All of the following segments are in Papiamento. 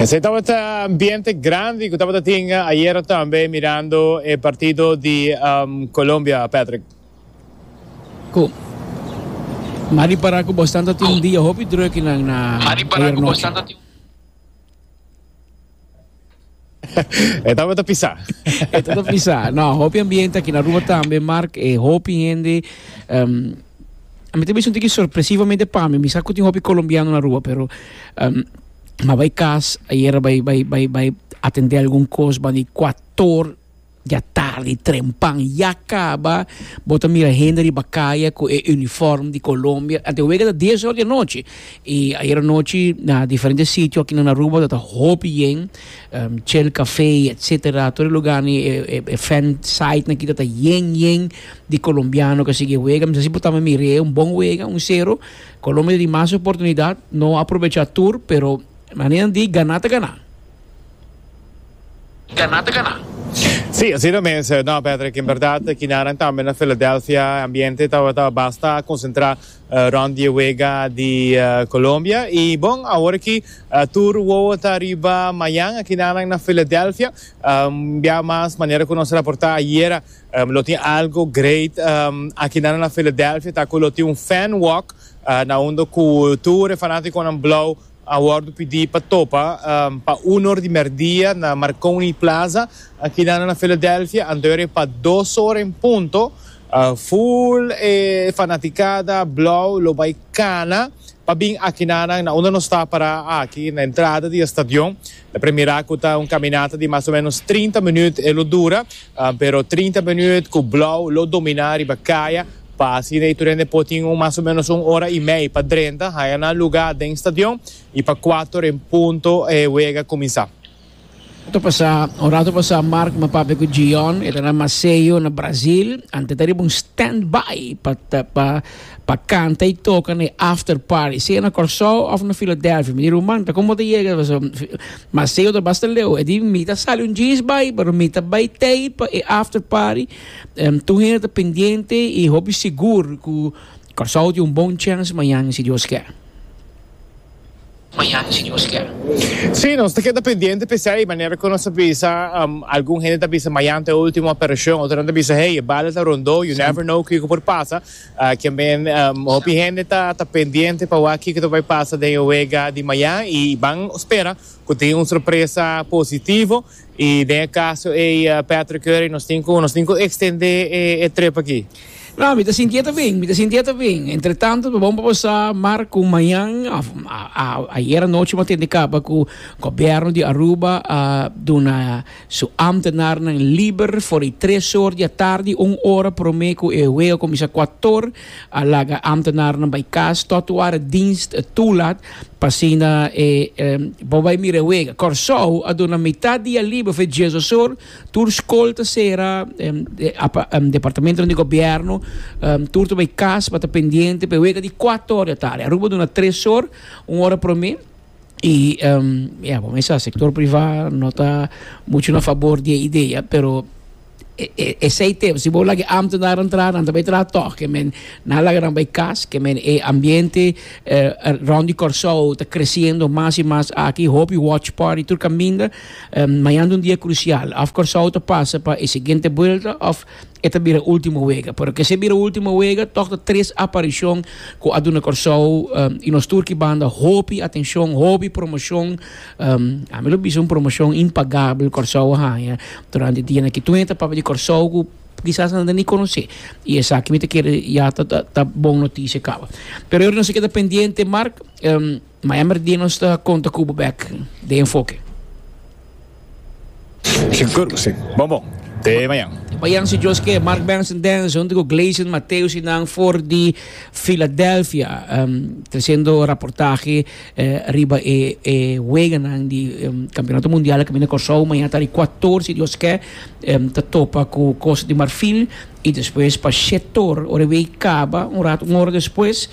Esei tabata ambiente grandi cu tabata tin ayera tambe mirando e partido di Colombia, Patrick. Cu. M'a di para cu Boston ta tin un dia hopi druk nan na ayernochi. E tabata pisá. E tabata pisá. No, hopi ambiente aqui na Aruba tambe, Mark, e hopi hende... Um, a mi também senti sorpresivamente para mim, misa que tem hopi colombiano na Aruba, pero... Um, mas vai cas, ayer vai, vai, vai, vai atender algum coisa, vai 14 Ya tardi trempan ya caba bo ta mira hende riba caya cu e uniform di Colombia ante wega ta dies ora di anochi y ayer anochi na diferente sitio aki na Aruba ta ta hopi yen Shell cafe etcetera tur e lugar ni e fan site nan aki ta ta yen yen di colombiano cu a sigui e wega mi ta si bo tambe mire un bon wega un cero Colombia ta di mas oportunidad no aprovecha tur pero manera nan di gana ta gana. Ganá ta ganá. Sí, asina mes, Hernan Patrick. En berdad, kinaran tambe na Filadelfia e ambiente tabata basta konsentrá rònt di e wega di Colombia. I bon, awor aki tur wowo ta riba mañan aki nan na Filadelfia. Bia mas, manera ku nos a raportá ayera, lo tin algu great aki nan na Filadelfia, ta ku lo tin un fan walk na unda ku tur e fanátikonan blou A wordo pidi pa topa pa uno ora di merdia na Marconi Plaza akina na Philadelphia, anto ora e pa dos ora en punto full e fanaticada blauw lo bai cana pa bin akina na unda nos ta para aki na entrada di e stadion. E primerá ku ta un kaminata di mas o ménos trinta minüt e lo dura, pero trinta minüt ku Blou lo dominá riba kaya, pa así e tur hende por tin un mas o ménos un ora i mei pa drenta, haña nan lugá den stadion i pa kuater en punto e wega kuminsá. Un ratu pasá Mark m'a papia ku Jiyon, e ta na Maseio, na Brazil, ante ta riba un stand-by pa. Pa kanta y toka na e after party, sea na Kòrsou of na Philadelphia. Mi di, Ruman, ta como bo ta yega? Mas sey otro bas ta leu. E di, Mi ta sali un jeans bai, pero mi ta bai tei pa e after party. Tur hende ta pendiente y hopi sigur cu Kòrsou tin un bon chance mañan, si Dios ker. Mañana si Dios kier. Sí, nos ta keda pendiente pe esei, manera cu nos a bisa, algun hende ta bisa mañana ta e ultimo aparision, otronan ta bisa hey, e bala ta rondó, you never know kico por pasa, kienben hopi hende ta ta pendiente pa wak kico ta bay pasa den e wega di mañana y ban spera cu tin un sorpresa positivo Y den e caso ey Patrick Curry nos tin cu nos tin cu extende e trip aki. Nah, mi ta sintié ta bien, mi ta sintié ta bien. Entretanto ta bon pa basa mar cu mañan of ayer anochi mos tende caba cu gobierno di Aruba a duna su ambtenarnan liber for di tres or di atardi un ora prome cu e wega a cuminsa cuator A laga ámtenarnan bai kas tòt e wara dienst tulat, pa asina e por bai mira e wega. Kòrsou a duna mitat dia liber for e dje sosor, tur skol ta sera, departamentonan di gobièrnu, tur ta bai kas pa ta pendiente pa e wega di kuator di atarde. Aruba a duna tres or, un ora promé. Y ya bo mesa sector priva no ta mucho na favor di e idea, pero esey tem si bo lage ambtenaren tra nan ta bay tra tog ke men nan laga nan bay cas ke men e ambiente rond di Corsou ta creciendo mas y mas aki hopi watch party tur caminda mañana ta un dia crucial of Corsou ta pasa pa e siguiente buelta of E ta bira ultimo wega, pero kese bira ultimo wega tog ta tres aparicion cu a duna Corsou y nos tur ki banda hopi atencion, hopi promocion. Ami lo bisa un promocion impagabel Corsou a haya durante dia na kitua ta papia di Corsou cu kisas nan ta ni conoce y esaki mi ta kere ya ta bon noticia caba. Pero e ordenansa keda pendiente Mark. Ma hember di nos ta konta ku bo bek den enfoke. Sigur, si. Bon bon. Te mañan. Te mañan si Dios ke. Mark Benson Dance hunto ku Gleison Mateus i nan for di Filadelfia um, trasendo raportahe eh, riba e e weganan di um, Kampionato Mundial a kaminda Kòrsou. Mañan ta di Ekuator si Dios ke. Um, ta topa ku Costa di Marfil i despues pa Shetor. Ora e wei kaba un rato, un ora despues.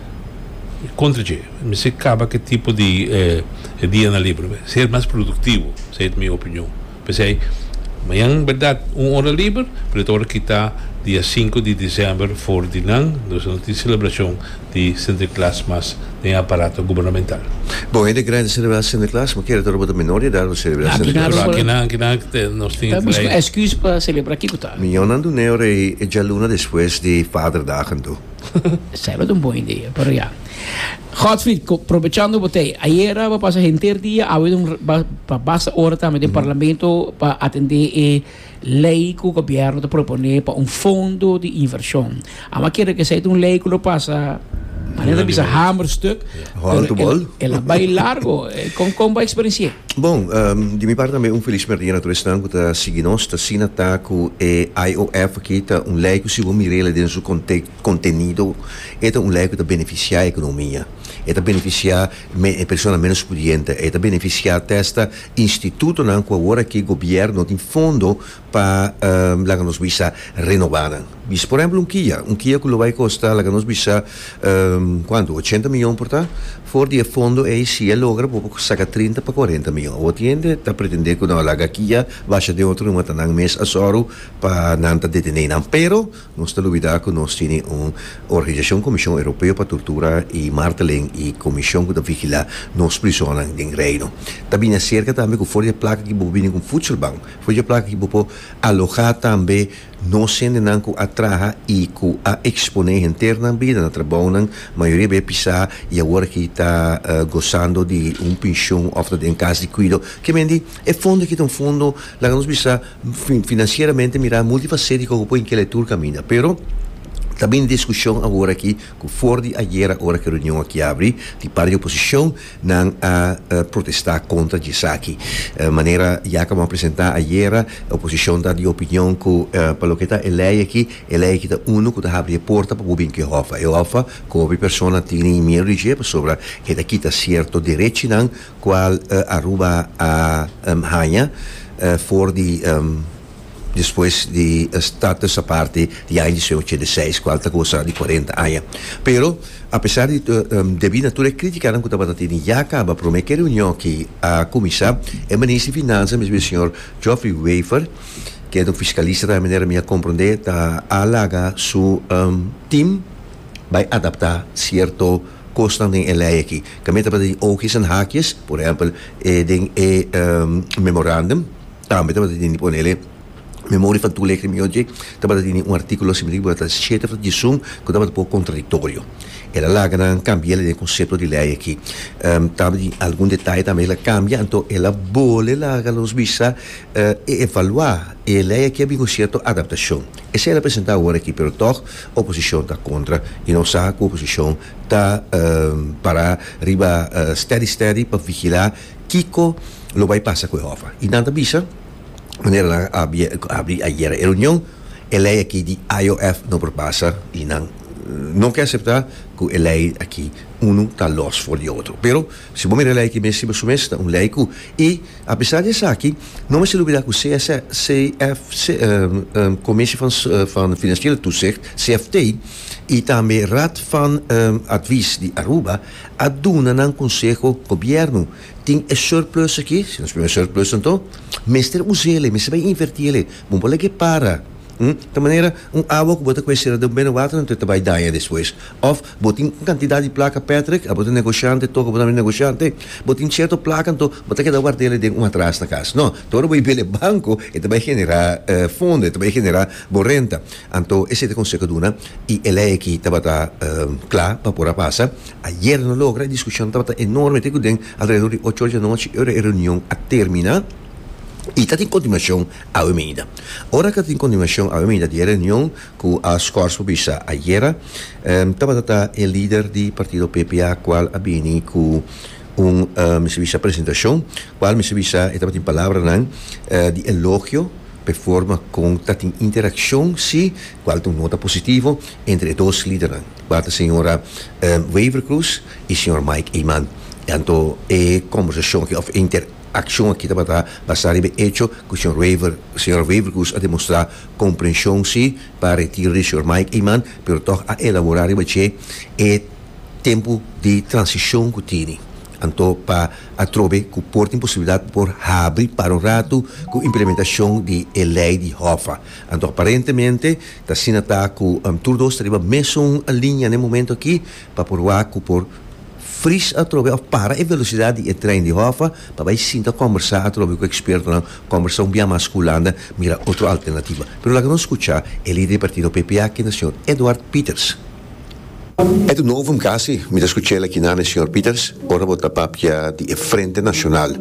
Contra dje, mi si caba ki tipo di dia na libre mi ser mas productivo, esey ta mi opinion. Pesey mañan en berdad un ora liber, pero e ta ora kita dia sinku di december for di nan, nos no tin celebracion di Sinterklaas mas den e aparato gubernamental. Bo hende grandi ta celebra Sinterklaas, ma kere ta ora bo ta menor di edad bo celebra Sinterklaas? Pero akinan, akinan nos tin. Ta busca excus pa celebra kico tal? Miñonnan dun'e ora ei e djalunan despues di Vaderdag anto. Sabbat un bon idea, pero ya. Godfried, probechando bo ta ei, ayera bo pasa henter dia, awe don pa basta ora tambe den parlamento pa atende e lei ku gobièrnu ta propone pa un fondo di invershon. Amba kere ku esei ta un lei ku lo pasa, manera ta bisa hamerstuk, el a bai largo. Kon kon bo eksperensi'é? Bon, di mi parti tambe un feliz merdia na todes nan ku ta sigui nos. Ta asina ta ku e IOF aki ta un lei ku si bo mira el den su kontenido e ta un lei ku ta benefisiá e ekonomia. E ta benefisiá e persona ménos pudiente. E ta benefisiá te asta institutonan ku awor aki gobièrnu tin fondo pa laga nos bisa renobá nan. Bis por ehemplo un Kia, un Kia ku lo bai kosta laga nos bisa kuantu ochenta miyon por ta, for di e fondo ei si e logra bo por saka trinta pa kuarenta miyon. Awor tin hende ta pretendé ku nau laga Kia basha den otro numa ta nan mes a sòru pa nan ta detené nan pero nos ta lubidá ku nos tini un organisashon Komishon Europeo pa Tortura i Marteling i komishon ku ta vigilá nos prizonnan den Reino ta bini aserka tambe ku for di e plaka aki bo bini ku un futselbank Fojo plaka ki bo por alojá tambe nos hendenan ku a traha i ku a eksponé henter nan bida na trabounan, mayoria di e pisá i awor aki ta gosando di un penshon òf ta den kas di kuido. Ke mende e fondo aki ta un fondo, laga nos bisa finansieramente mirá multifasétiko ku por hinká el e tur kaminda. Pero ta bini diskushon awor aki ku for di ayera ora ku e reunion aki abri di parti di oposishon Nan a protesta kontra dje saki. Manera Jacob a presenta ayera, oposicion ta di opinion cu pa loke ta e ley aki, e ley aki ta uno cu ta habri e porta pa bo bin cu e hoffa. E hoffa cu hopi persona tini miedu di dje pasobra e ta kita cierto derechinan cual Aruba a haña for di. despues di e status aparte di aña dies ochenta i seis cual ta goza di cuarenta aña. Pero a pesar di debi na tur e criticanan cu tabata tene ya caba prome ke reunion aki a cuminsa e Minister di Finansa mesmo e señor Geoffrey Wever ke ta un fiscalista tambe manera mi a comprende ta a laga su team bay adapta cierto cosnan den e ley aki ke me tabata tin oogjes en haakjes por ehempel den e memorandum. Tambe tabata tene, ponele, Memoria infantil Leer Crime Yochi tabata tene un artículo siempre ki tabata shete for di sum cu tabata poco contradictorio. El a laga nan cambia den e concepto di ley aki. Tambe tin algun detaye tambe el a cambia, anto el a bole laga nos bisa e evalua e ley aki a bin un cierto adaptacion. Esey el a presenta awor aki, pero toch oposicion ta contra y nos sa cu oposicion ta para riba steady steady pa vigila. Kiko lo bai pasa ku e hòf a? I nan ta bisa, manera nan a abri ayera e reunion, e lei aki di IOF no por pasa i nan no ke aseptá ku e lei aki unu ta lòs for di otro. Pero si bo mira e lei aki mes riba su mes ta un lei ku i apesar di esaki no mester lubidá ku CFC, Commissie van Financiële Toezicht, CFT, i tambe Raad van Advies di Aruba, a duna nan konseho, Gobièrnu tin e surplus aki, si nos biba surplus anto mester usa el, mester bai invertí el, bo no por laga e para, ta manera un awa ku bo ta kuestioná den bena water anto e ta bai daña despues, òf bo tin un kantidat di plaka Patrick, abo ta negoshiante, tokio bo no tabata negoshiante, bo tin sierto plaka anto bo ta keda warda el den un atras na kas, nò, ta ora bo a biba el e banko e ta bai generá fondo, e ta bai generá bo renta. Anto e siete conseho duna y e ley aki tabata cla pa por a pasa. Ayer no logra, e discusion tabata enorme te cu den alrededor di ocho ora di anochi e ora e reunion a termina y ta tin continuacion awe meida. Ora cu ta tin continuacion awe meida di e reunion cu a scors por bisa ayera tabata ta e lider di partido PPA cual a bini cu un mester bisa presentacion cual mester bisa e tabatin palabranan di elogio. p'e forma kon ta tin interakshon si kual ta un nota positivo entre e dos lidernan, kua ta señora Wever Croes i señor Mike Eman. Anto e kòmbersashon aki òf e interakshon aki tabata basá riba e echo ku señor Wever señora Wever Croes a demostrá komprenshon si pa retiro di señor Mike Eman pero tòg a elaborá riba dje e tempu di transishon ku tini. Anto pa atrobe cu por tin posibilidad pa por habri para un ratu cu implementacion di e ley di Hoffa. Anto aparentemente t'asina ta cu tur dos ta riba mesun linea n'e momento aki pa por wak cu por fris atrobe of para e velocidad di e trein di Hoffa pa bay sinta combersa atrobe cu expertonan, combersa un bia mas cu Hulanda, mira otro alternativa. Pero laga nos scucha e lider di partido PPA, kende señor Edward Pieters. E ta novum casi, mi ta scuch'el aki na mi Señor Peters, ora bo ta papia di e Frente Nacional,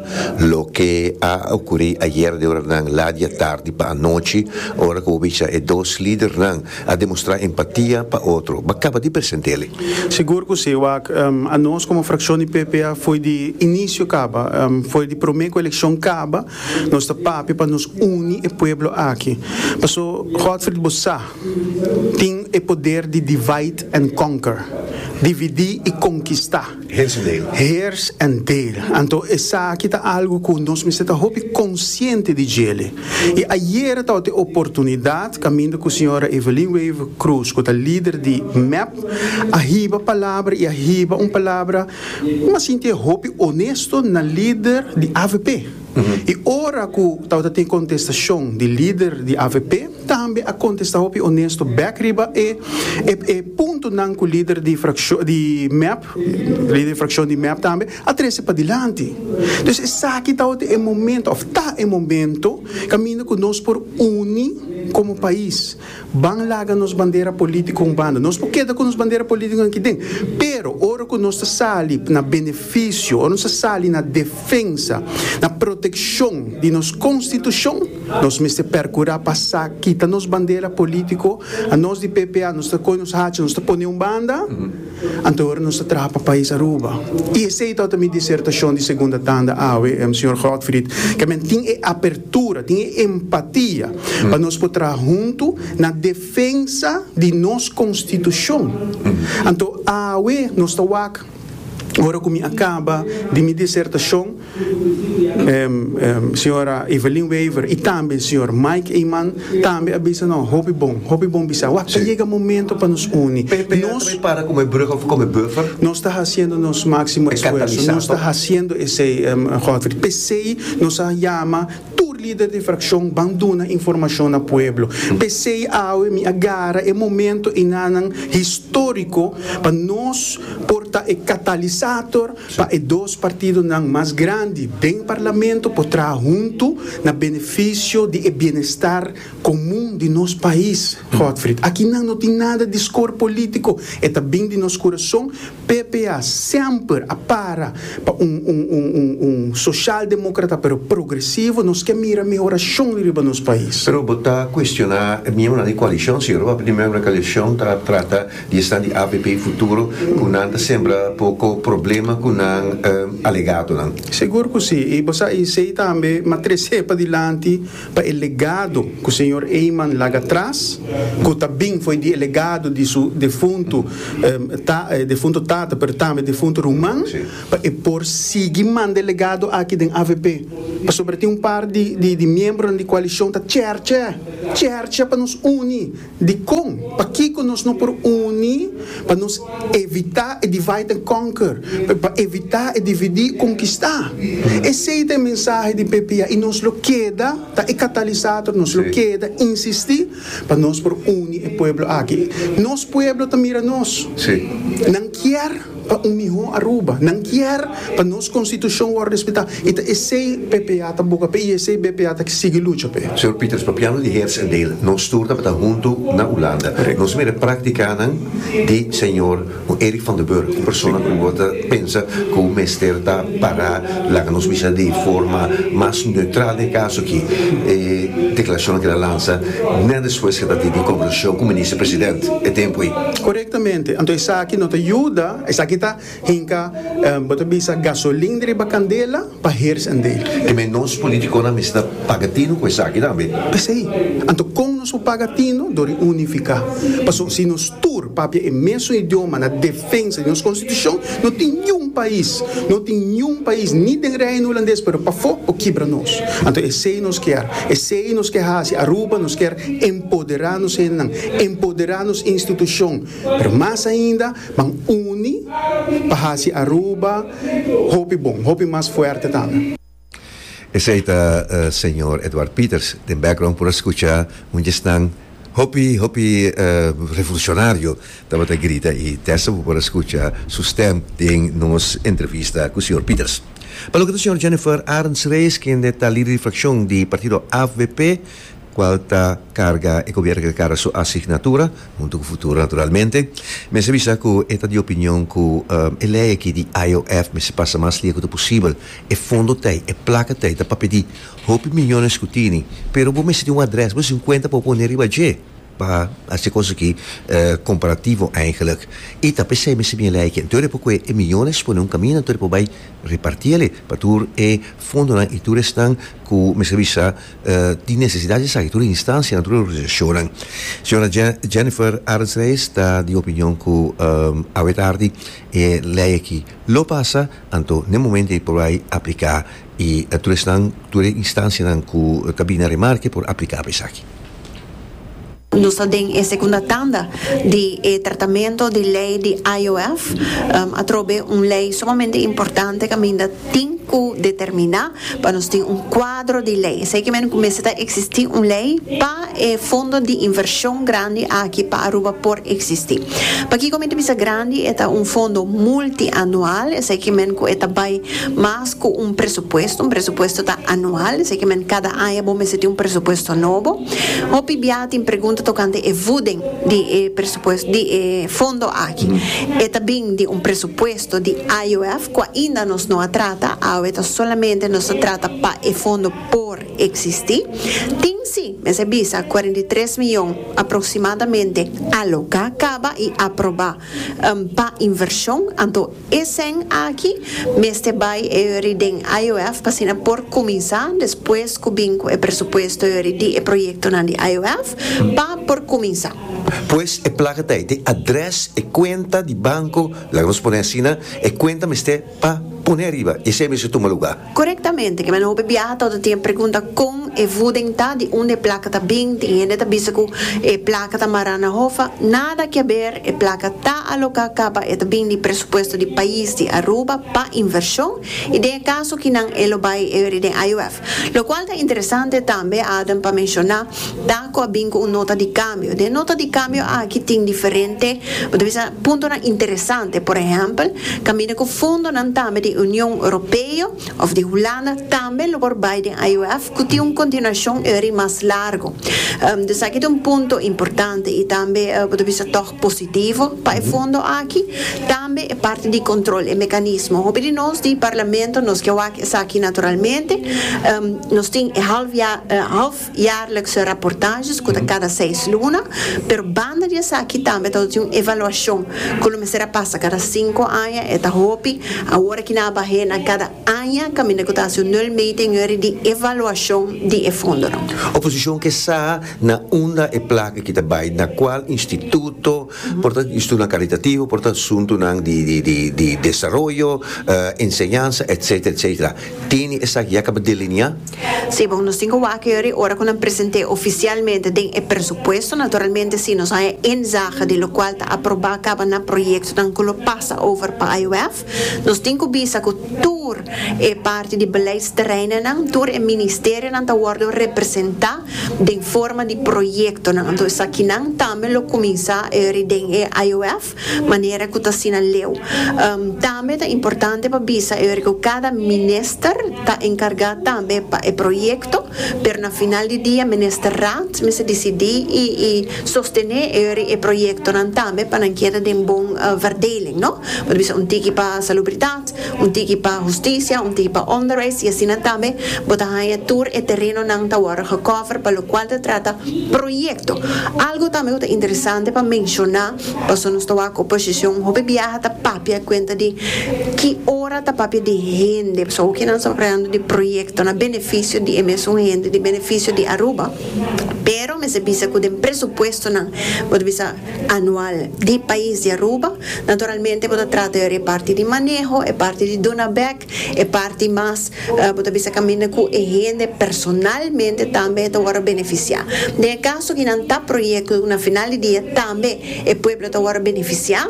loke a ocuri ayer di oranan la dia tardi pa anochi, ora cu bo bicha e dos lidernan a demostra empatia pa otro, ba caba di present'eli. Sigur cu si, wak, a nos como fraccion di PP a fo'i di inicio caba, fo'i di prome cu eleccion caba, nos ta papia pa nos uni e pueblo aki. Paso, Godfried, bo sa. tin e poder di divide and conquer, dividí i konkistá, heers and deel, anto esaki ta algu ku nos mester ta hopi konsiente di djele. I ayera tabata e oportunidat kaminda ku señora Evelyn Wever Croes ku ta lider di mep a hiba palabra i a hiba un palabra mas sintié hopi onesto na lider di avp. I ora ku tabata tin kontestashon di lider di avp tambe a kontestá hopi onesto bèk riba e e puntonan ku lider di frakshon di mep lider di frakshon di mep tambe a trese padilanti. Dus esaki tabata e momento òf ta e momento kaminda ku nos por uni komo pais. Ban laga nos bandera polítiko un banda. Nos por keda ku nos bandera polítiko aki den, pero ora ku nos ta sali na benefisio, ora nos ta sali na defensa, na protekshon di nos konstitushon, nos mester perkurá pa sa kita nos bandera polítiko. Anos di PPA nos ta koge nos hacha, nos ta pone un banda. Anto ora nos ta traha pa pais Aruba y esey ta ota mi disertacion di segunda tanda awe, Sr. Godfried, ke men tin e apertura, tin e empatia pa nos por traha hunto na defensa di nos constitucion. Anto awe nos ta wak, ora cu mi a caba di mi disertacion, Señora Evelyn Wever y tambe Señor Mike Eman tambe a bisa no hopi bon, hopi bon bisa. Wak ta yega momento pa nos uni. Nos ta haciendo nos maximo esfuerzo, nos ta haciendo esey Godfrey. Pesey nos a yama tur lider di fraccion ban duna informacion na pueblo. Pesey awe mi a gara e momento enanan historico pa nos por ta e catalisator pa e dos partidonan mas grandi den parlamento por traha huntu na benefisio di e bienestar komun di nos pais. Godfrid, Akinan no tin nada di skor polítiko, e ta bin di nos kurason. PPA semper a para pa un un soshaldemokrata pero progresivo, nos ke mira mehorashon riba nos pais. Pero bo ta kuestioná e miembronan di koalishon, si Europa di miembronan di koalishon ta trata. Di esnan di APP Futuro cu nan ta sembra poco problema cu nan alegadonan. Segur cu si, y bo sa esey tambe, ma trece pa dilanti pa e legado cu señor Eyman laga tras, cu ta bin fo'i di e legado di su defunto defunto tata pero tambe defunto ruman, pa e por sigui manda e legado aki den AVP. Pasobra tin un par di di di miembronan di coalicion ta cherche, cherche pa nos uni. Dikon? Pakiko nos no por uni pa nos evitá e divide and conquer, pa evitá e dividí i konkistá? Esei ta e mensahe di PPA i nos lo keda ta e katalisator, nos lo keda insistí pa nos por uni e pueblo aki. Nos pueblo ta mira nos, nan kier. pa un mihó Aruba. Nan kier pa nos konstitushon wòrdu respetá i ta esei BPA ta buka p'e i esei BPA ta sigui lucha p'e. Señor Pieters, pa piano di Heerts en Dale nos stur ta bata huntu na Ulanda. Nos ta mira e práktikanan di señor Erik van den Burg, un persona ku bo ta pensa ku mester ta pará, laga nos bisa di forma mas neutral den e kaso akí, e deklarashon akí el a lansa nèt despues ku el tabata di konversashon ku Minister President e tempu ei. Korektamente, anto esaki no ta yuda, esaki ta hinka, bo ta bisa, gasolin di riba kandela pa hers en dei. Dime, nos politiconan mester ta paga tino cu esaki tambe? P'esei, anto con nos por paga tino? Dor di unifica. Pasobra si nos tur papia e mesun idioma na defensa di nos constitucion, no tin niun pais, no tin niun pais, ni den Reino Hulandes pero pafo, por kibra nos. Anto esei nos kier. Esei nos ke haci. Aruba nos kier Empoderá nos hendenan, empoderá nos institushon, pero mas ainda ban uni pa hasi Aruba hopi bon, hopi mas fuerte tambe. Esei ta señor Edward Peters. Den background por a skucha un djesnan hopi, hopi revolucionario tabata grita i desta bo por a skucha su stem den nos entrevista ku señor Peters. Pa loke ta señor Jennifer Arends-Rees kende ta lider di frakshon di partido avp cual ta carga e gobierno que ta carga su asignatura, hunto cu Futuro naturalmente. Mester bisa cu e ta di opinion cu e ley aki di IOF mester pasa mas lia cu ta posibel. E fondo ta ei, e placa ta ei, ta pa pidi hopi millones cu tini, pero bo mester tin un adres, bo mester tin un cuenta pa bo pone riba dje pa haci cos aki comparativo eigenlijk. Y ta pesey mester bin e ley aki. Anto e por coge e millones pone un camino, anto e por bay reparti ale pa tur e fondonan y tur esnan cu mester bisa tin nesesidat di saki tur e instansia, na tur e organisashonnan. Señora Jennifer Arends-Reis ta di opinion ku awe tardi e lei aki lo pasa, anto n'e momento ei por bai apliká i tur esnan, tur e instansianan ku ta bini na remarke por apliká pa esaki. Nos ta den e segunda tanda di e tratamento di ley di IOF. Atrobe un ley sumamente importante caminda tin cu determina pa nos tin un cuadro di ley. Esey kimen cu mester ta existi un ley pa e fondo di inversion grandi aki pa Aruba por existi. Pakico mi ta bisa grandi? E ta un fondo multianual, esey kimen cu e ta bay mas. cu un presupuesto, un presupuesto ta anual, esaki men cada aña bo mester tin un presupuesto nobo. Hopi biaha tin pregunta tocante e voeding di e presupuesto, di e fondo aki. E ta bin di un presupuesto di IOF cu ainda nos no a trata, awe ta solamente nos ta trata pa e fondo por existi. Tin si, mester bisa, cuarenta y tres miyon aproximadamente aloca caba y aproba pa inversion, anto. Esnan aki mester bai e ori den IOF pa asina por kuminsá despues ku bin ku e presupuesto e ori di e proyektonan di IOF pa por kuminsá. Pues e plaka ta ete adrès e kuenta di banko, laga nos pone asina, e kuenta mester pa pone ariba i esei mester tuma lugá. Korektamente, kende nan hopi biaha tabata tin e pregunta kon e voeding ta, di unda e plaka ta bin, tin hende ta bisa ku e plaka ta mará na Hoffa, nada ke haber, e plaka ta aloká kaba e ta bin di presupuesto di pais di Aruba pa invershon i den e kaso ki nan e lo bai e ri den IUF. Lokual ta interesante tambe, Adam, pa menshoná ta ku a bin ku un nota di kambio. Den e nota di kambio aki tin diferente, bo ta bisa, Puntonan interesante, por ehèmpel, kaminda ku fondonan tambe di Union Europeo òf di Hulanda tambe lo por bai den IOF ku tin un kontinuashon eri mas largu. Dus aki ta un punto importante i tambe bo ta bisa tòg positivo pa e fondo aki. Tambe e parti di kòntròl, e mekanismo. Hopi di nos di Parlamento nos ke wak esaki naturalmente. Nos tin e half. Jaarlikse raportages ku ta kada seis luna, pero banda di esaki tambe ta hasi un evaluashon ku lo mester a pasa kada sinku aña, e ta hopi. Awor aki nan a bah'é na kada aña kaminda ku ta hasi un nul meting yori di evaluashon di e fondonan. Oposishon ke sa na unda e plaka ki ta bai na kual instituto por ta institutonan karitattivo, por ta asuntunan di desaroyo, enseñansa, etsetera, etsetera. Tene esaki ya caba deliniá? Sí, bon, nos tin cu wak yuri ora cu nan present'é oficialmente den e presupuesto. Naturalmente si nos haya en zaga di locual ta aprobá caba na proyectonan cu lo pasa over pa IUF. Nos tin cu bisa cu tur e parti di beleidsterreinonan, tur e ministerionan ta wordo representá den forma di proyectonan. Anto esakinan tambe lo cuminsá yuri den e IUF. manera ku ta asina leu. Tambe ta importante pa bisa e oir ku kada minister ta enkargá tambe pa e proyekto, pero na final di dia Ministerraad mester disidí i sostené e oir di e proyektonan tambe pa nan keda den bon verdeling, no? Bo ta bisa un tiki pa Salubridat, un tiki pa Hustisia, un tiki pa Onderwijs i asina tambe bo ta haña tur e terenonan ta wòrdu gekover pa lokual ta trata proyekto. Algu tambe ku ta interesante pa menshoná Pasobra nos ta wak oposishon, hopi biaha ta papia kuenta di ki ora ta papia di hende, pasobra hopi nan sa papayando di proyektonan benefisio di e mesun hende, di benefisio di Aruba, pero mester bisa ku den presupuestonan, bo ta bisa anual, di pais di Aruba, naturalmente bo ta trata di ora e parti di maneho, e parti di duna bèk, E parti mas bo ta bisa kaminda ku e hende personalmente tambe e ta wòrdu benefisiá. Den e kaso ki nan ta proyekto ku na final di dia tambe e pueblo ta wòrdu benefisiá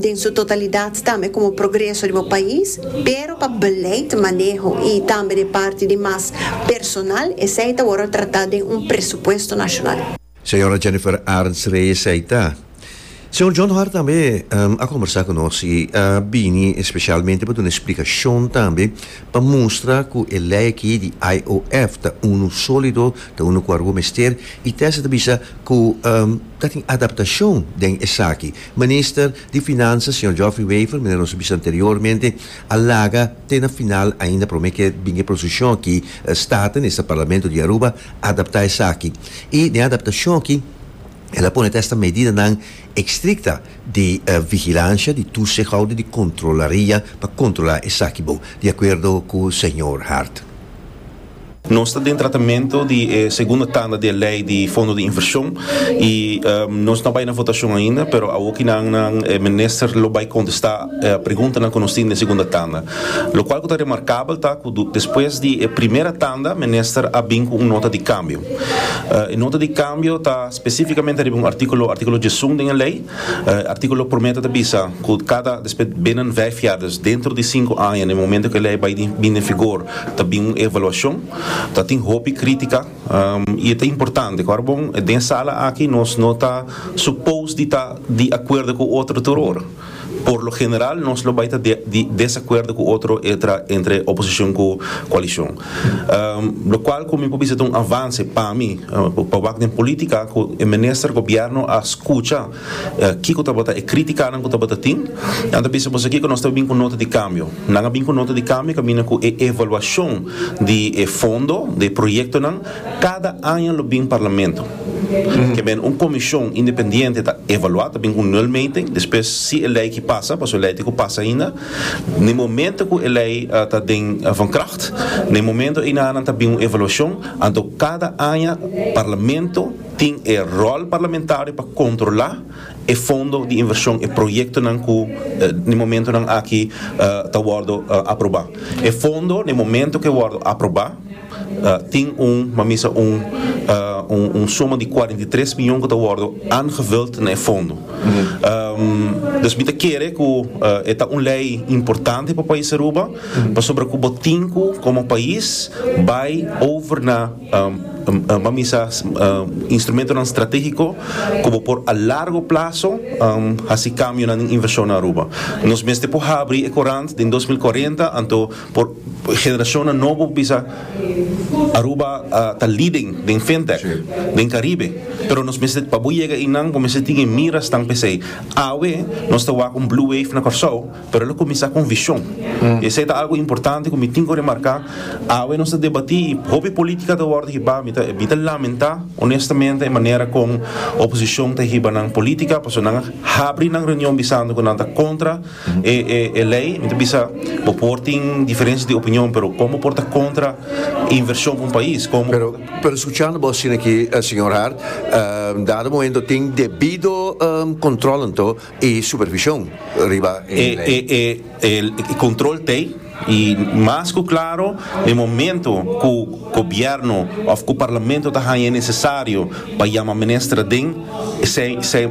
den su totalidat tambe komo progreso di bo pais, pero pa beleid maneho i tambe den parti di mas personal esei ta wòrdu tratá den un presupuesto nashonal. Señora Jennifer Arntz Reyes ei ta. Señor John Hart tambe a combersa cu nos y a bini especialmente pa duna explicacion tambe pa mustra cu e ley aki di IOF ta unu solido, ta unu cu a rubo mester y Tessa ta bisa cu ta tin adaptacion den esaki. Minister di Finanzas, Señor Geoffrey Wever, manera nos a bisa anteriormente, a laga te na final ainda prome keer bini e procesion aki, Staten, esta Parlamento di Aruba, adaptá esaki i den adaptashon aki el a pone ta esta medidanan estrikta di vigilansha, di tusihou i di kontrolaria pa kontrolá esaki bo, di akuerdo ku señor Hart. Nos ta den tratamentu di e segunda tanda di e lei di fondo di invershon i nos no a bai na votashon ainda, pero awokinan nan e minister lo bai kontestá. e preguntanan ku nos tin den segunda tanda. Lokual ku ta remarkabel ta ku despues di e primera tanda Minister a bin ku un nota di kambio. E nota di kambio ta spesífikamente riba un artíkulo, artíkulo djesun den e lei. E artíkulo promé ta ta bisa ku kada despues binnen vijf jaar, dus dentro di sinku aña den e momento ku e lei a bai bin den vigor, ta bin un evaluashon. Ta tin hopi krítika i e ta importante. Ku arbon den e sala aki nos no ta supos di ta di akuerdo ku otro tur ora. Por lo general nos lo bai ta di desakuerdo ku otro entre oposishon ku koalishon. Lo kual ku mi por bisa ta un avanse pa mi, pa wak den polítika ku e minister, gobièrnu a skucha kiko tabata e krítikanan ku tabata tin i nan ta bisa boso kiko nos ta bin ku nota di kambio. Nan a bin ku nota di kambio kaminda ku e evaluashon di e fondo, di e proyektonan. Cada aña lo bin Parlamento ke ben un comision independiente ta evalua ta bin cu nul meting despues si e ley ki pasa paso e ley tin cu pasa ainda n'e momento cu e ley ta den van kracht n'e momento eina nan ta bin un evaluacion anto cada aña Parlamento tin e rol parlamentario pa controla e fondo di inversion e proyectonan cu n'e momento nan aki ta wordo aproba e fondo n'e momento ke wordo aproba. Tin un, mamisa un, un suma di cuarenta i tres mion cu ta wordo aangevuld na e fondo. Dus mi ta kere cu e ta un ley importante pa pais Aruba pasobra cu bo tin cu como pais bay over na, mamisa, instrumentonan strategico cu bo por a largo plazo haci cambionan den inversion na Aruba. Nos mester por habri e corant den dos mil cuarenta anto. Por generacionnan nobo bisa Aruba ta leading den fintech den Caribe, pero nos mester pa bo yega eynan bo mester tin e miras tan pesey. Awe nos ta wak un blue wave na Corsou, pero lo cuminsa con vision. Y esey ta algo importante cu mi tin cu remarca. Awe nos ta debati y hopi politica ta wordo hiba. Mi ta mi ta lamenta honestamente e manera con oposicion ta hiba nan politica, pasobra nan a habri nan reunion bisando cu nan ta contra. E e lei mi ta bisa bo por tin diferencia di opinion pero con bo por ta contra inversion pa un pais con bo por ta. Pero scuchando bo asina aki señor Hart dado momento tin debido control anto y supervision riba e lei. E e e control ta ey y mas cu claro den momento cu gobierno of cu parlamento ta haya e necesario pa yama minister aden esey esey